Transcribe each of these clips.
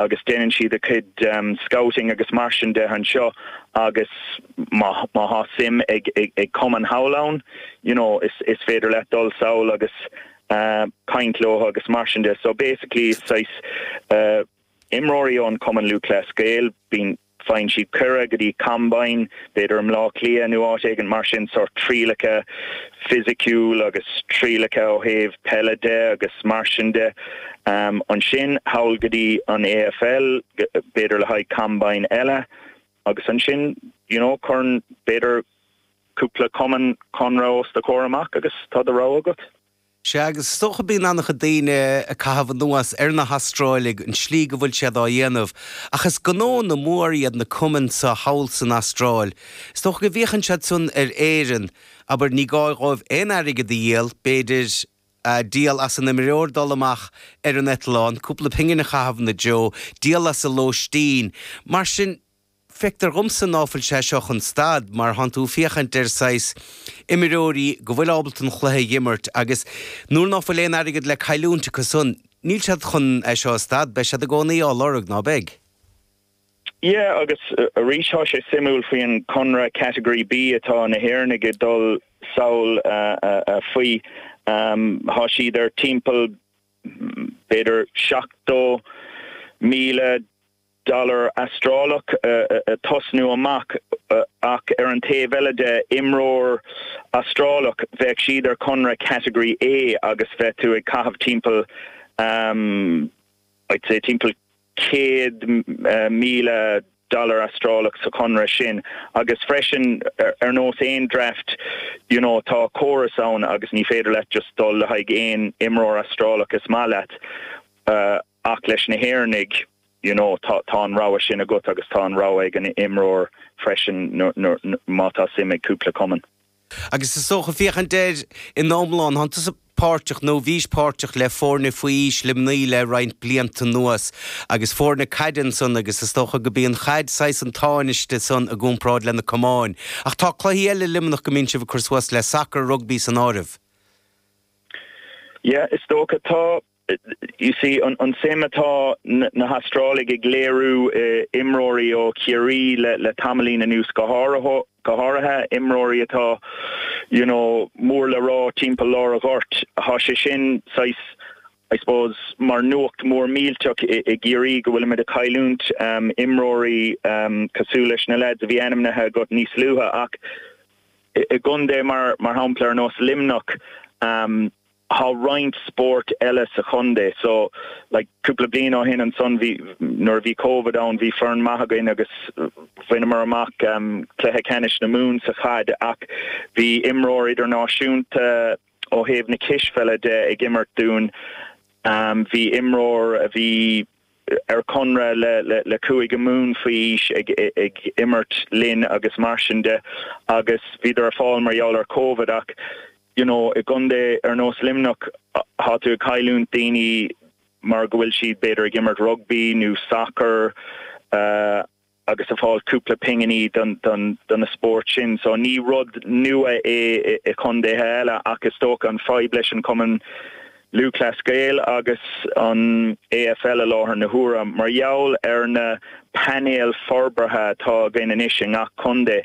agus déanann siad a cuid scouting agus mar sin de anseo agus má thá suim ag cumann thall ann you know is féidir leat dul sall agus caint leo agus mar sin de so basically is saghas imreoirí ón gCumann Lúthchleas Gael bíonn Faigheann siad cuireadh go dtí combine, b'fhéidir i mBleá Cliath nó áit éigin mar sin, sórt trialacha fisiciúil agus trialacha ó thaobh peile de agus mar sin de. Ansin sall go dtí an AFL, b'fhéidir le haghaidh combine eile agus ansin, you know, cuireann b'fhéidir cúpla cumann conradh os do chomhair amach agus tá do rogha agat. Sea, agus is dócha bíonn an-chuid daoine ag caitheamh anuas ar na hAstráiligh, an tslí go bhfuil siad á dhéanamh, ach is gnóanna mór iad na cumainn seo thall san Astráil. Is dócha go bhféachann siad san ar Éirinn, abair, ní gá dhóibh aon airgead a dhíol, b'fhéidir, ah, díol as an imreoir dul amach ar an eitleán, cúpla pingin a chaitheamh ina dtreo, díol as a lóistín. Mar sin. Feictear dhomsa ná fuil sé seo chun stad mar thánn tú ag féachaint ar saghas imreoirí go bhfuil ábalta an cluiche a dh'imirt agus nuair ná fuil aon airgead le cailliúint acu so níl siad chun é seo a stad, beidh siad i gcónaí á lorg, ná beidh? Yeah agus arís thá sé suimiúil faoi an conradh category B atá na hÉireannaigh ag dul sall faoi. Thá siad ar timpeall b'fhéidir 70,000 dollar Astrálach ag tosnú amach ach ar an taobh eile de, imreoir Astrálach, bheadh siad ar chonradh category A agus bheadh tú ag caitheamh timpeall I'd say timpeall céad míle dollar Astrálach sa chonradh sin agus freisin ar nós aon draft you know tá córas ann agus ní féidir leat just dul le haghaidh aon imreoir Astrálach is maith leat Ach leis na hÉireannaigh, you know, tá an rogha sin agat agus tá an rogha ag an imreoir freisin má tá suim ag cúpla cumann. Agus is dócha, féachaint air ina iomlán, tánn tusa páirteach nó bhís páirteach le foirne faoi aois Luimnigh le roinnt blianta anuas agus foirne caide ansan agus is dócha go mbíonn an chaid saghas an tánaiste san i gcúmparáid leis na camáin. Ach tá cluichí eile i Luimneach go mbíonn sibh ag cur suas le, sacar, rugbaí san áireamh. Yeah, is dócha. Tá. You see, an tsuim atá na hAstrálaigh ag léiriú in imreoirí ó Chiarraí le tamaillín anuas go háirithe, imreoirí atá, you know, mór le rá timpeall lár a' ghoirt, thá sé sin saghas, I suppose, mar nuacht mór millteach i gCiarraí go bhfuilimid a' cailliúint imreoirí cosúil leis na lads a bhí ainmnithe agat níos luaithe ach i gcontae mar shampla ar nós Luimneach, Tá roinnt spóirt eile sa chontae so like cúpla bliain ó shin ansan bhí nuair a bhí Covid ann bhí foireann maith againn agus bhaineamar amach ehm cluiche ceannais na Mumhan sa chaid ach bhí imreoir idirnáisiúnta ó thaobh na cispheile de ag imirt dúinn ehm bhí imreoir a bhí ar chonradh le Cúige Mumhan faoi aois ag imirt linn agus mar sin de agus bhíodar ar fáil mar gheall ar Covid ach you know i gcontae ar nós Luimneach tá tú ag cailliúint daoine mar go bhfuil siad b'fhéidir ag imirt rugbaí nó sacar uh, agus ag fáil cúpla pinginí do na spóirt sin so ní rud nua é i condaetha eile ach is dócha an fadhb leis an Cumann Lúthchleas Gael agus an AFL i láthair na huaire mar gheall ar na painéil forbartha atá againn anois i ngach condae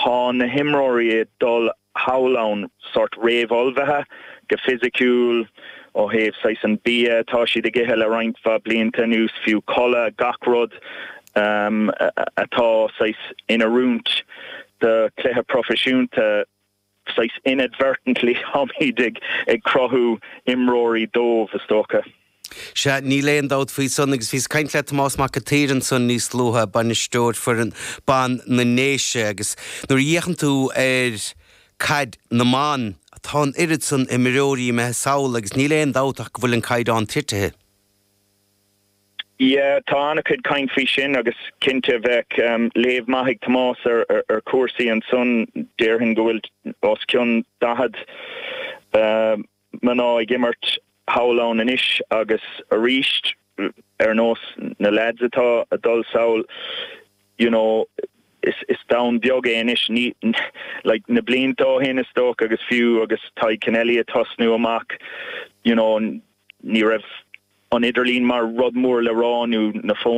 thá na himreoirí ag dul thall ann, sort réamhullmhaithe go fisiciúil, ó thaobh saghas an bia atá siad ag ithe le roinnt mhaith blianta anuas, fiú codladh, gach rud atá saghas in oiriúint do chluiche proifisiúnta, saghas inadvertently táimíd ag cruthú imreoirí dóibh is dócha. Sea, níl aon dabht faoi san, agus bhíos ag caint le Tomás Mac a tSaoir ansan níos luaithe, bainisteoir foireann ban na nDéise, agus nuair a fhéachann tú ar Caid na mBan, tá an oiread san imreoirí imithe sall agus níl aon dabht ach go bhfuil an caighdeán titithe. Yeah, tá an-chuid caint faoi sin agus cinnte bheadh léamh maith ag Tomás ar chúrsaí ansan. Déarfainn go bhfuil os cionn daichead. mná ag imirt thall ann anois agus aríst ar nós na lads atá a' dul sall you know is, is domhan beag é anois ní, like na blianta ó shin is dócha agus fiú agus Tadhg Kennelly a' tosnú amach you know ní raibh an idirlíon mar rud mór le rá nó na fóin.